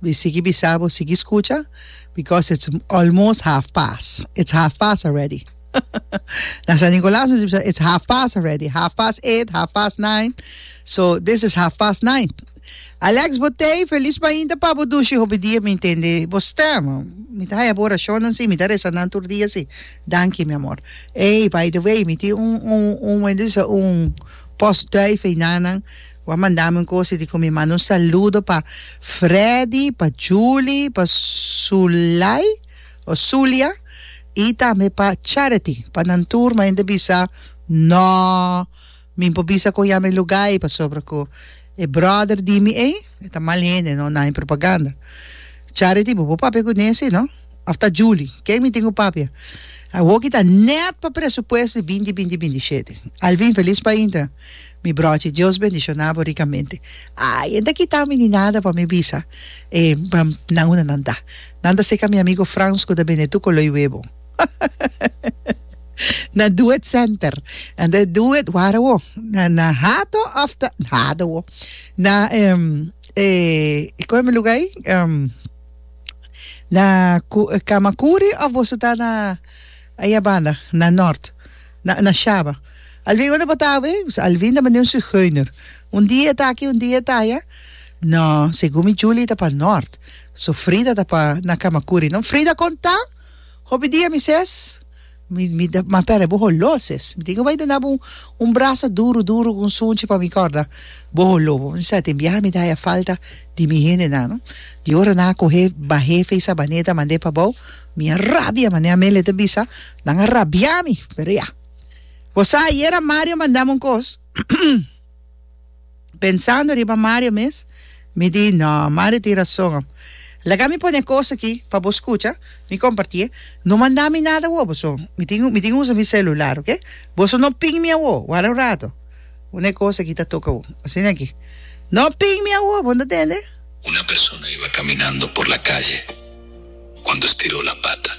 Mi sigui bisa bo sigui scucha because it's almost half past, it's half past already na San Nicolas nos a bisa it's half past already, half past eight, half past nine, so this is half past nine. Alex Botey felis mainta pa bo dushi hopi dia mi intende bo stem mi ta haya bo oracionnan si mi ta resa nan tur dia si danki mi amor ey by the way mi tin un un un un post duivenanan Bo a mandami un cosa di cu mi manda un saludo pa Freddy, pa Julie, pa Sulay o Sulia y tambe pa Charity. Pa nan tur mi ta bisa no mi por bisa con yami lugar ey pasobra cu e brother di mi ey e ta mal hende no naye propaganda. Charity bo por papia cu Nesy no of ta Julie ken mi tin cu papia. Awoki ta net pa presupuesto di binti binti binti shete. Alvin feliz pa inter. Mi brochi Dios bendiciona bo ricamente ay e ta kita mi ni nada pa mi bisa e nan una nan ta nan ta seca mi amigo Frans cu ta bene tu coloi webo na do it center nan ta do it wara wo na hato of ta hato wo na coe mi luga ay na camacuri of boso ta na ay a banda na north. Na na shaba. Alvin unda bo ta awe? Pues Alvin ta mane un zigeuner. Un dia e ta aki, un dia e ta aya. No, segun mi Julie ta pa nort. So Frida ta pa na Kamakuri. No, Frida kon ta? Hopi dia mi ses, Mi mi ta ma pera bo holo ses. Mi tin ku bai duna bo un brasa duru duru ku un sunchi pa mi korda bo holo. Bo no sa den biaha mi ta haya falta di mi hendenan no. Di ora nan a kohe bahefe i sabaneta mande pa bou mi a rabia mane Amelia ta bisa. Nan a rabia mi, pero ya. Bo sa ayera Mario mandami un cos, pensando riba Mario mes, mi di no, Mario tin razon am. Laga mi pone e cos aki pa bo scucha, mi comparti e. No manda mi nada awor boso, mi tin mi tin usa mi celular, ok? Boso no ping mi awor, wara un rato, unda e cos aki ta toca bo. Asina aki. No ping mi awor, bo no ta tende? Una persona iba caminando por la calle cuando estiró la pata.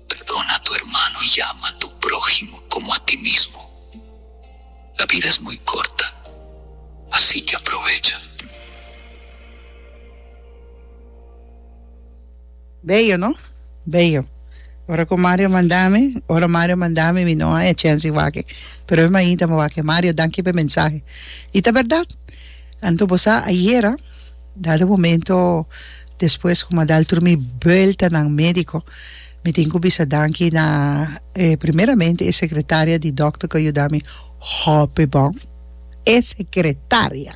Perdona tu hermano y ama tu prohimo como a ti mismo. La bida es muy corta, asi que aprovecha. Bello no? Bello. Ora cu Mario manda mi, ora Mario manda mi, mi no a echensi wak-e. Pero mi mainta mi wak-e. Mario, danki p'e mensahe. I ta berdad. Anto bo sa ayera. Dado momento despues ku mi a dal tur mi buelta na médiko, mi tin ku bisa danki na e primeramente e sekretaria di dòkter ku a yuda mi hopi bon. E sekretaria!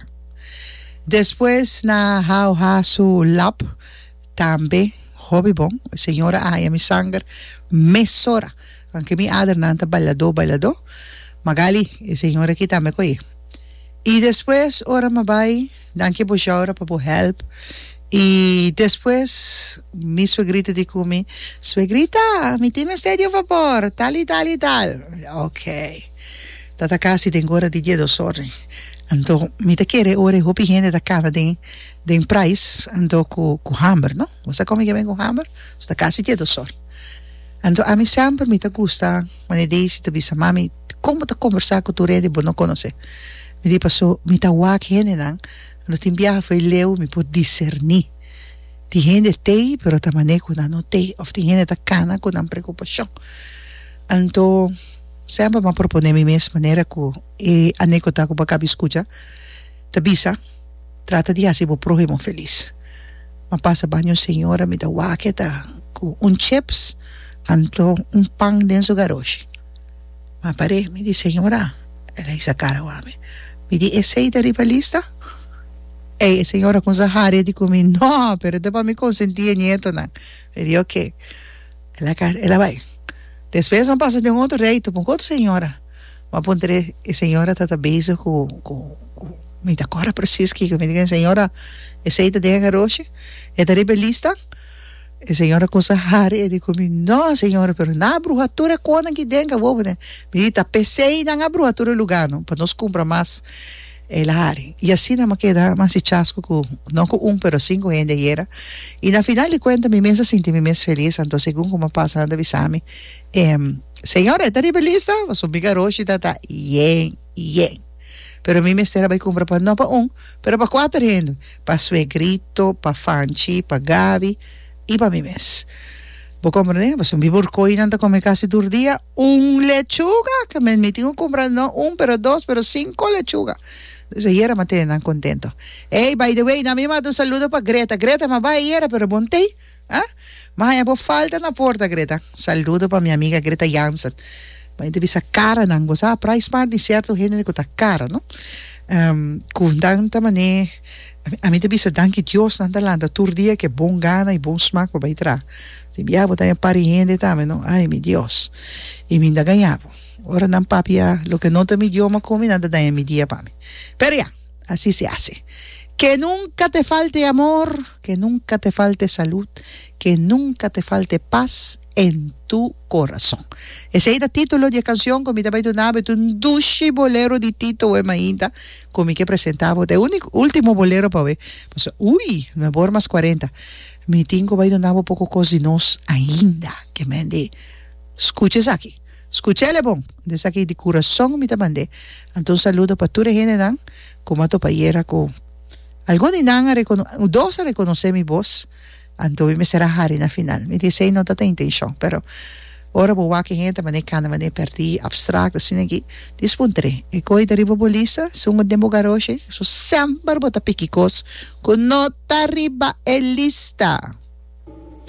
Despues na Hauha su lab tambe hopi bon. E señora a haña mi sanger mesora. Kan ke mi adernan ta bailadó bailadó, Magalie, e señora aki tambe ku aye. I despues ora mi a bai. Danki bo Jaura pa bo help. I despues mi suegrito di cu mi, Suegrita, mi tin mester di un fabor, tal i tal i tal. Ok. Ta ta casi den ora di die dos ora. Anto mi ta kere ora e hopi hende ta cana den den prais, anto cu cu hamber, no? Bo sa con mi ke ben cu hamber? So ta casi die dos ora. Anto ami semper mi ta gusta, wanneer Daisy ta bisa, Mami, Kon bo ta kombersá ku tur hende bo no konosé? Mi di, Pasó mi ta wak hendenan, lo tin biaha fo'i leu mi por diserní. Tin hende tei, pero ta manera ku nan no tei, òf tin hende ta kana ku nan preokupashon. Anto, sèmpel mi a proponé mi mes manera ku e anekdota ku bo a kabi skucha ta bisa, Trata di hasi bo próhimo felis. Mi a pasa baña un señora, mi ta wak e ta ku un cheps, anto un pan den su garoshi. Ma paré mi di señora, el a hisa cara cu ami, mi di esey ta riba lista? Ey e señora cuminsa haria di cu mi, no, pero ta pa mi consenti e nietonan. Mi di ok. El a car, el a bay. Despues mi a pasa den un otro rey, tucu un otro señora. Mi a puntra e, e señora tata bezig cu, cu, cu, mi ta cora precies kiko, mi di cu e señora, esey ta den e garoshi? E ta riba e lista? E señora kusa hari e di ku mi, No, señora, pero nan a bruha tur e konan ki den kabobo den. Mi di, Ta pesei nan a bruha tur e luganan pa nos kumpra mas e lahari. I asina mi a keda mas di chasku ku, no ku un, pero sinku hende ayera. I na final di kuenta mi mes a sinti mi mes felis, anto segun ku mi a pasa nan ta bisa mi, Señora, e ta riba e lista? Pasobra mi Garoshi ta ta yen. yen. Pero mi mester a bai cumpra pa, no pa un, pero pa cuater hende, pa Suegrito, pa Fanchi, pa Gaby y pa mi mes. Bo comprende? Pasobra mi Borcoinan ta come casi tur dia un lechuga, ta mi mi tin cu cumpra no un pero dos, pero cinco lechuga. Entonces ayer a m'a tene nan contento. Ey, by the way, nan mi a manda un saludo pa Greta. Greta, m'a bay ayera pero bon t'ey. Ha? M'a haña bo falta na porta, Greta. Saludo pa mi amiga Greta Jansen. Bo a yente bisa karanan. Bo sa a pray smart di sierto hende ku ta kara, no? Ku nan ta manera e, ami ta bisa danki Dios nan ta lanta tur dia ku e bon gana i bon smak pa bai traha. Te bia bo ta haña par di hende tambe, no? Ay, mi Dios! I mi ta gaña bo. Ora nan papia loke no ta mi idioma ku mi, nan ta daña mi dia pa mi. Pero ya! Así se hace. Ke nunka te falte e amor, ke nunka te falte e salud, ke nunka te falte e pas en tu corazón. Esei ta título di e canción ku mi ta bai duna bo. E ta un dushi bolero di Tito Wem ainda ku mi ke presentá bo. Ta e único, último bolero pa awe. Pasobra, ui, mi a bor mas cuarenta. Mi tin ku bai duna bo poko kos di nos ainda. Ke mende skucha esaki. Scucha el e bon. Anto esaki di curason mi ta mand'e. Anto un saludo pa tur e hendenan cu m'ha topa ayer acu. Algun di nan a recono, dos a reconoce mi voz, anto mi mester a hari na final. Mi di esey no ta ta intencion, pero ora bo wak e hende mane cana, mane perdi, abstract, asina aki, dis bo un tre. E coy ta riba bo lista, sungo den bo garoshi, so semper bo ta piki cos cu no ta riba e lista.